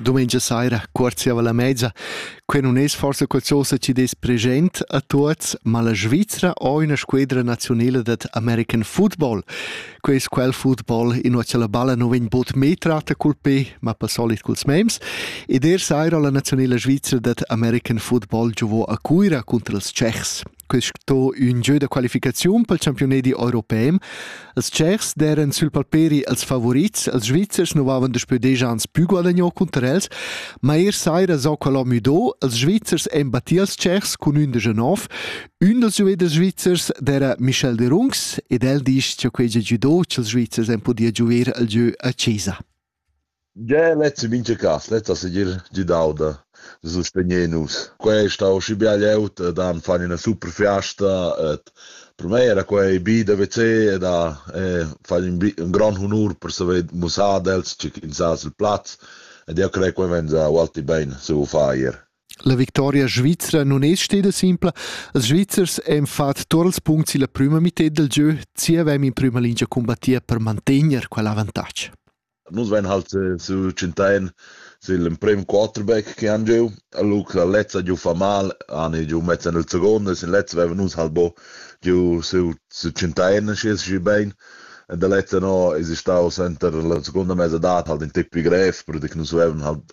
Dumengia saira, quarziava la mezza. Quei non es forse qualcosa ci des present a tuots, ma la Svizzera ho una squadra nazionale dat American football. Quei es quel football in ua la balla non vegn bod me tratta col pe, ma pa solit culs mems. Ed er saira la nazionale svizzera dat American football giovò a Cuira contra els Tschechs. sto ün gieu da qualificaziun pel champiunedi europem. Els tschers d'eran sül palperi els favorits, els Svizzers nu vavan daspö deja ans plü guadagnò cunter els, ma eir saira s'ho calà müdò, els Svizzers en battì als tschers cun ün deja nov, ün dals giuveders svizzers d'era Michel Derungs ed el disch cha quei già giudò ch'els Svizzers en podia giuver al gieu a Cesa. Gie, lezzi mintga cass, lezza segir gidau da sustegner nus. Quei ei stau aschi bia glieud ed han fan ina super fiasta ed per mei era quei bi da veser ed ha fan in, in grond honur per saver mussar ad els tgei ch'ins ha sil plaz ed jeu crei quei vegn ualti bein saviu far ier. La victoria svizra non es steda simpla. Els Svizzers han fat tuot ils punts illa prüma mità del giö, chi avevam in prüma lingia combattia per mantegner quel avantatg. Nus vain halt eh, su Cintain sil emprem quarterback che han giu, Luc la lezza giu fa mal, ani giu mezza nel secondo, sin lezza vevan nus halt bo giu su su Cintain schi schi bein. E da lezza no es stau center la seconda mezza dat halt in tipi grev, perché nus vevan halt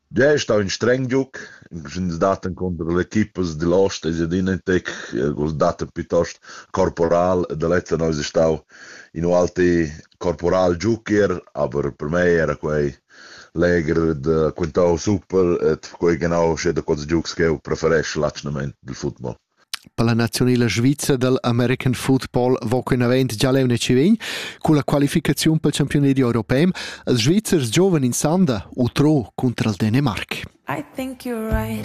Gie, stau in streng giug, ins dat encunter l'equipa digl ost e adina in tec, vus dat piuttost corporal e da lezza eis stau in ualti corporal giucher, aber per mei era quei legher da quintau super e quei genau sche da quels giugs ch'jeu preferesch l'atschgnament dil football. Per la naziunala svizra dal American football va quinavant gia leu netschi vegn culla qualificaziun pel campiunadi europem als Svizzers giovens in Sanda, utro cunter al Dänemark. I think you're right.